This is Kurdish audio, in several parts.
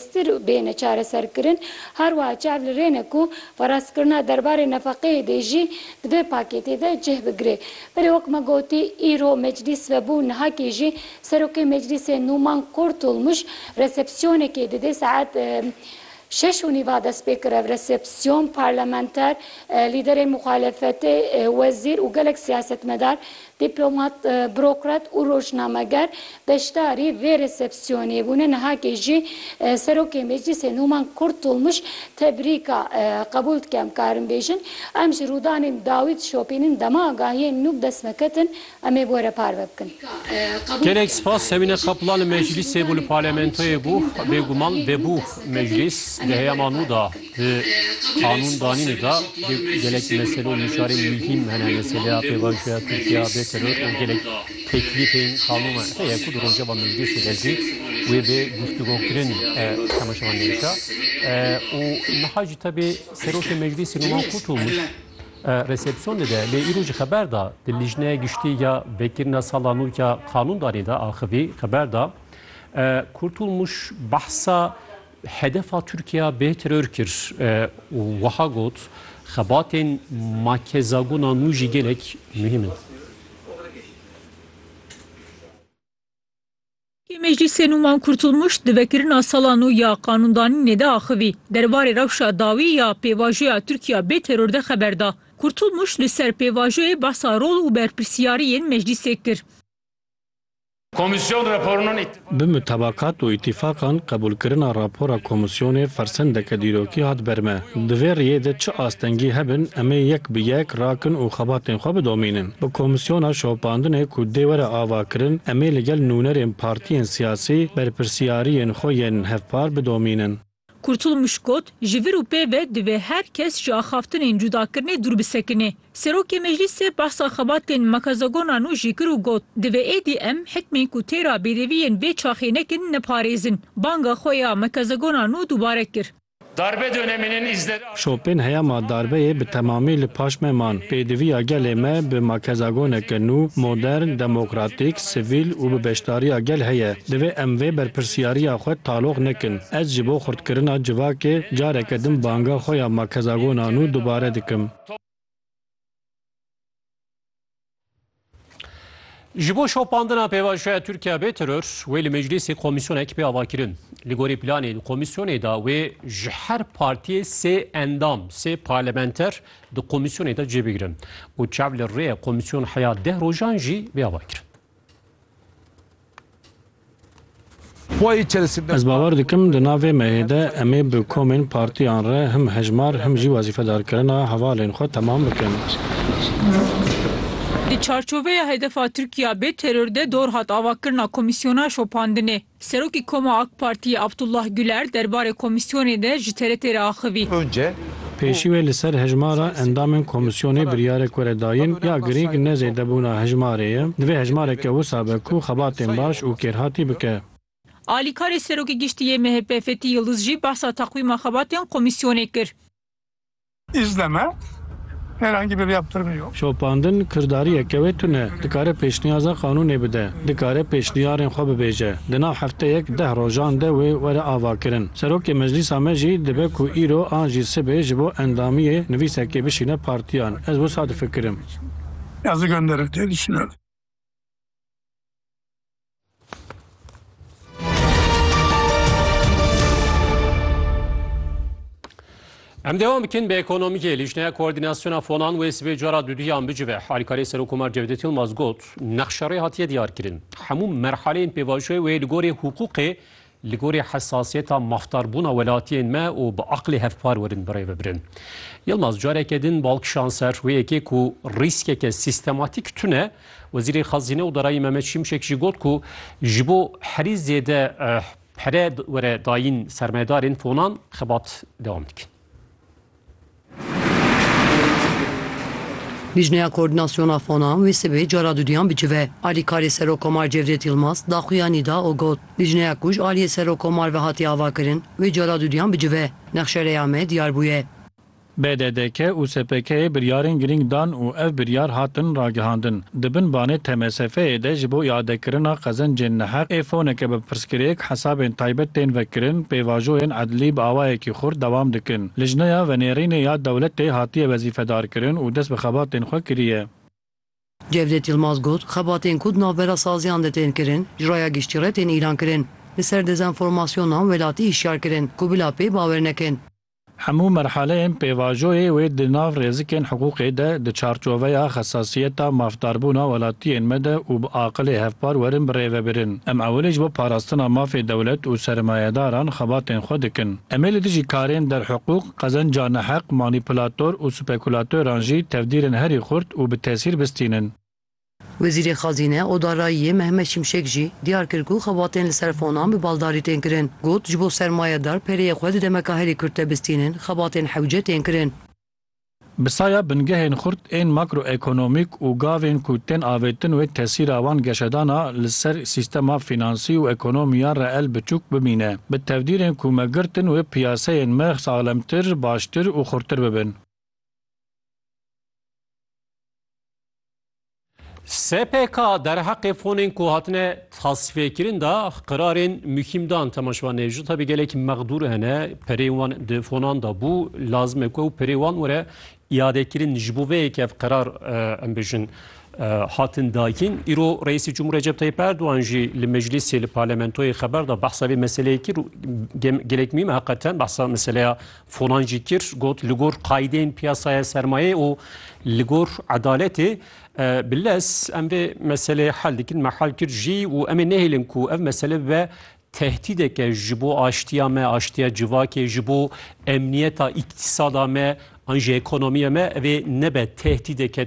stir bêne çareserkirin. Her wiha çav li rê ne ku parastkirina derbarê nefeqeyê dê jî di vê pakêtê de cih bigire. Belê wek me gotî îro meclîs vebû nihakê jî Serokê Meclîsê Nûman Kurtulmuş resepsiyonekê didê saet şeş û nîv a dest pê kir. Ev resepsiyon parlamenter, lîderên muxalefetê, wezîr û gelek siyasetmedar Dîplomat, burokrat û rojnameger beşdarî vê resepsiyonê bûne. Nihakê jî Serokê Meclîsê Nûman Kurtulmuş tebrîka qebûl dike. Em karin bêjin em ji rûdanên dawî dişopînin. Dema agahiyên nû bi dest me ketin em ê bi we re parve bikin. Gelek spas Semîne Kaplan li Meclîsê bû li Parlamentoyê bû. Bêguman vebû Meclîs di heyama nû de Di qanûndanînê de dê gelek mesele û mişarên muhîm hene. Meseleya pêvajoya Tirkiya bê teror û gelek teklîfên qanûna te ye ku di Rojava Meclîsê de jî wê bê guftûgokirin temaşevan nêşa û niha jî tevî Serokê Meclîsê Numan Kurtulmuş resepsiyon dide. Lê îro jî xeber da di Lijneya Giştî ya Vekirina Sala Nû ya Qanûndanî de axivî xeber da Kurtulmuş behsa Hedefa Tirkiye bê teror kir û wiha got, Xebatên ma kezagona nû jî gelek muhîm in. Yê Meclîsê nû Wan Kurtulmuş di vekirina sala nû ya qanûndanînê de axivî. Derbarê rewşa dawî ya pêvajoya Tirkiye bê teror de xeber da. Kurtulmuş li ser pêvajoyê behsa rol û berpirsiyariyên Meclîsê kir. Bi mutabakat û îtîfaqan qebûlkirina rapora komîsyonê fersendeke dîrokî hat ber me. Di vê riyê de çi astengî hebin em ê yek bi yek rakin û xebatên xwe bidomînin. Bi komîsyona şopandinê ku dê were avakirin em ê li gel nûnerên partiyên siyasî berpirsiyariyên xwe yên hevpar bidomînin. Kurtulmuş got, Ji vir û pê ve divê her kes ji axaftinên cudakirinê dûr bisekinê. Serokê Meclîsê behsa xebatên Makazagonan û jî kir û got, Divê êdî em hikmên ku tê re bêdevî yên vê çaxê nekin neparêzin. Banga xwe ya Makazagonan û dubare kir. Darbe döneminin izleri. Şopên heya ma darbeyê bi temamî li paş me man. Pêdiviya gelê me bi makezagoneke nû, modern, demokratîk, sivîl û bi beşdariya gel heye. Divê em vê berpirsyariya xwe taloq nekin. Ez ji bo xurtkirina civakê careke din banga xwe ya makezagona nû dubare dikim. Ji bo şopandina pêvajoya Tirkiya bê teror wê li meclîsê komîsyonek pê avakirin. Li gorî planên komîsyonê de wê ji her partiyê sê endam, sê parlamenter di komîsyonê de cê bigirin û çav li rê ye komîsyon heya deh rojan jî bê avakirin. Ez bawer dikim di navê me yê de em ê bi komên partiyan re him hejmar him jî wezîfedarkirina hevalên xwe temam bikin. Di çarçoveya hedefa Tirkiya bê teror de dor hat avakirina komîsyona şopandinê. Serokê Koma AK Partiyê Abdullah Guler derbarê komîsyonê de ji TRT'ê re axivî. Pêşî wê li ser hejmara endamên komîsyonê biryarek were dayîn ya girîng ne zêdebûna hejmarê ye, divê hejmareke wisa be ku xebatên baş û kêrhatî bike. Alîkarê Serokê Giştî yê MHP Fetî Yildiz jî behsa teqwîma xebatên komîsyonê kir. Îzleme. Herhangi bir yaptırımı yok. Şopandin kirdariyeke wê tune, dikare pêşniyaza qanûnê bide, dikare pêşniyarên xwe bibêje, di nav hefteyek deh rojan de wê were avakirin. Serokê meclîsa me jî dibe ku îro an jî sibê ji bo endamiyê nivîsekê bişîne partiyan. Ez wisa difikirim. Yazı gönderir diye düşünüyorum. Em devam bikin bi ekonomiyê lîjneya koordînasyona fonan wê sibê cara duduyan bicive halîkarê Serokkomar Cevdet Yilmaz got nexşerê hatiye diyarkirin hemû merhaleyên pêvajoyê wê li gorê hûqûqê Li gorî hesasiyeta maftarbûna welatiyên me û bi aqlê hevpar werin birê bibirin. Yilmaz careke din bal kişand ser rûyekê ku rîskeke sîstematîk tune. Wezîrê Xezîne û Darayî Mehmet Şimşek jî got ku ji bo herî zêde pere were dayîn sermayedarên fonan xebat dewam dikin. Lijneya Koordînasyona Fona wê sibê cara duduyan bicive. Alîkarê Serokkomar Cevdet Yilmaz daxuyanî da û got, Lijneya ku ji aliyê Serokkomar ve hatiye avakirin, wê cara duduyan bicive. Nexşereya me diyar bûye. BDDK û SPK'ê biryarên girîng dan û ev biryar hatin ragihandin. Di bin banê TMSF'ê de ji bo îadekirina qezencên neheq ê foneke bi pirsgirêk, hesabên taybet tên vekirin, pêvajoyên edlî bi awayekî xurt dewam dikin. Lijneya Venêrînê ya Dewletê hatiye wezîfedarkirin û dest bi xebatên xwe kiriye. Cevdet Yilmaz got, Xebatên ku di navbera saziyan de tên kirin, ji raya giştî re tên îlankirin. Li ser dezenformasyonan welatî hişyarkirin ku bila pê bawer nekin. Hemû merhaleyên pêvajoyê wê di nav rêzikên hiqûqê de, di çarçoveya xesasiyeta mafdarbûna welatiyên me de û bi aqilê hevpar werin birêvebirin. Em ewilî ji bo parastina mafê dewlet û sermayedaran xebatên xwe dikin. Em ê li dijî karên derhiqûq, qezenca neheq, manîpulator û spekûlatoran jî tevdîrên herî xurt û bi tesîr bistînin. Wezîrê Xezîne û Darayiyê Mehmet Şimşek jî diyar kir ku xebatên li ser fonan bi baldarî tên kirin. Got, Ji bo sermayedar pereyê xwe di demeka herî kurt de bistînin, xebatên hewce tên kirin. Bi saya bingehên xurt ên makroekonomîk û gavên ku tên avêtin wê tesîra wan geşedana li ser sîstema fînansî û ekonomiya reel biçûk bimîne. Bi tevdîrên ku me girtin wê piyaseyên me saxlemtir, baştir û xurtir bibin. SPK derheqê fonên ku hatine tasfêkirin da qirarên muhîm dan temaşvan ê ji tabî gelek mexdûr hene perê wan di fonan da bû lazim e ku ew perê wan were iadekirin ji bo vê yek ev qirar em bijin hatin dakin îro reîsî Cumhur Recep Tayyip Erdoğan jî li meclisê li parlamentoyê xeber da behsa vê meseleyê kir gelek muhîm heqeten behsa meseleya Fonan jî kir got li gor qayîdên piyasaya sermayê û li gor edaletê bi lez em vê meseleyê hel dikin me hel kir jî û em ê nehêlin ku ev mesele bibe tehdîdeke ji bo aştiya me, aştiya civakê, ji bo emniyeta îktisada me an jî ekonomiya me ev ê nebe tehdîdeke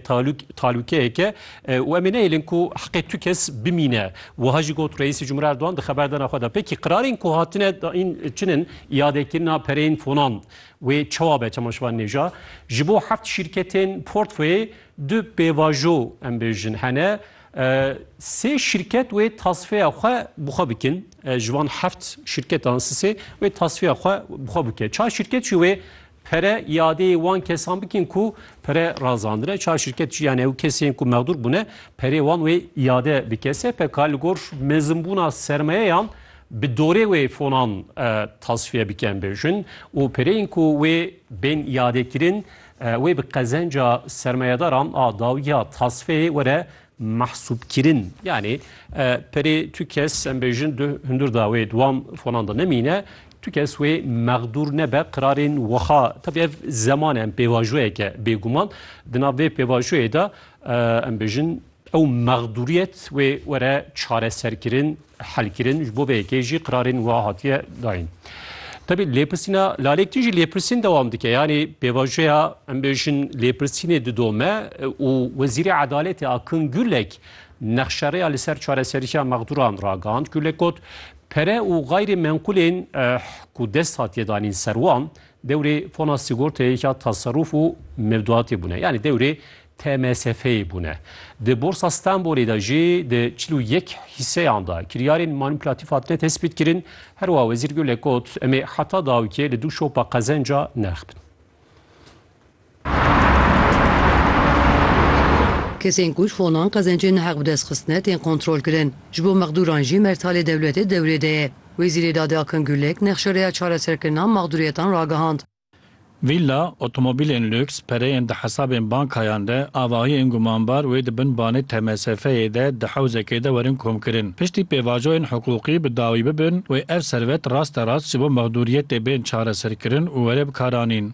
talûkeyeke û em ê nehêlin ku heqê tu kes bimîne. Wiha jî got Reîsê Cumhurê Erdogan di xeberdana xwe de pekî qirarên ku hatine dayîn çin in Îadekirina pereyên fonan wê çawa be çema şivan nêja? Ji bo heft şîrketên portföyê du pêvajo em bêjin hene. Sê şîrket wê tasfeya xwe bi xwe bikin. Ji van heft şîrketan sisê wê tasfeya xwe bi xwe bike. Çar şîrket jî wê Pere iadeyê wan kesan bikin ku pere razandine. Çar şirket jî yan ew kesên ku mexdûr bûne perê wan wê iade bike. SPK li gor mezinbûna sermayeyan bi dorê wê fonan tasfiye biken bi jin û pereyên ku wê bên iadekirin wê bi qezenca sermayedaran a dawiya tasfiyeyê were mehsûbkirin yanî perê tu kes em bêjin du hundir da wê dwan fonan da nemîne tu kes wê mexdûr nebe qirarên wiha tabi ev zeman em pêvajoyeke bêguman di nav vê pêvajoyê de em bêjin ew mexdûriyet wê were çareserkirin helkirin ji bo vê yekê jî qirarên wiha hatiye dayîn. Tevî lêpirsîna lalek tî jî lêpirsîn dewam dike yanî pêvajoya em bêjin lêpirsînê didome û Wezîrê Edaletê Akın Gürlek nexşereya li ser çareseriya mexdûran ragihand. Gürlek got, Pere û gayrê menqûlên ku dest hatiye danîn ser wan Dewrê fona sîgorteyê ya taserrûf û mevduatê bûne. Yanî dewrê TMSF'yê bûne. Di Borsa Stenbolê de jî di çil û yek hîseyan de kiryarên manîpulatîf hatine tespîtkirin. Her wiha Wezîr Gulek got, Em ê heta dawikê li du şopa qezenca nirexbin. Kesên ku ji fonan qezencên neheq bi dest xistine tên kontrolkirin. Ji bo mexdûran jî mertalê dewletê dewrê de ye. Wezîrê Dadê Akin Gulek nexşereya çareserkirina mexdûriyetan ragihand. Vîlla, otomobîlên lûks, pereyên di hesabên bankayan de, avahiyên gumanbar wê di bin banê TMSF'ê de di hewzekê de werin komkirin. Piştî pêvajoyên hiqûqî bi dawî bibin wê ev servet rasterast ji bo mexdûriyetê bên çareserkirin û were bikaranîn.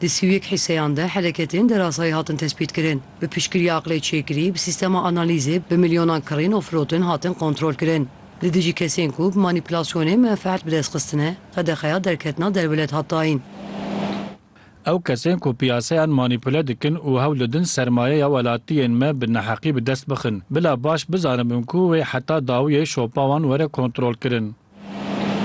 Di sî û yek hîseyan de heleketên derasayî hatin tespîtkirin. Bi piştgiriya aqilê çêkirî, bi sîstema analîzê bi milyonan kirîn û firotin hatin kontrolkirin. Li dijî kesên ku bi manîpulasyonê menfeet bi dest xistine, qedexeya derketina derwelêt hat dayîn. Ew kesên ku piyasayan manîpule dikin û hewl didin sermayeya welatiyên me bi neheqî bi dest bixin, bila baş bizanibin ku wê heta dawiyê şopa wan were kontrolkirin.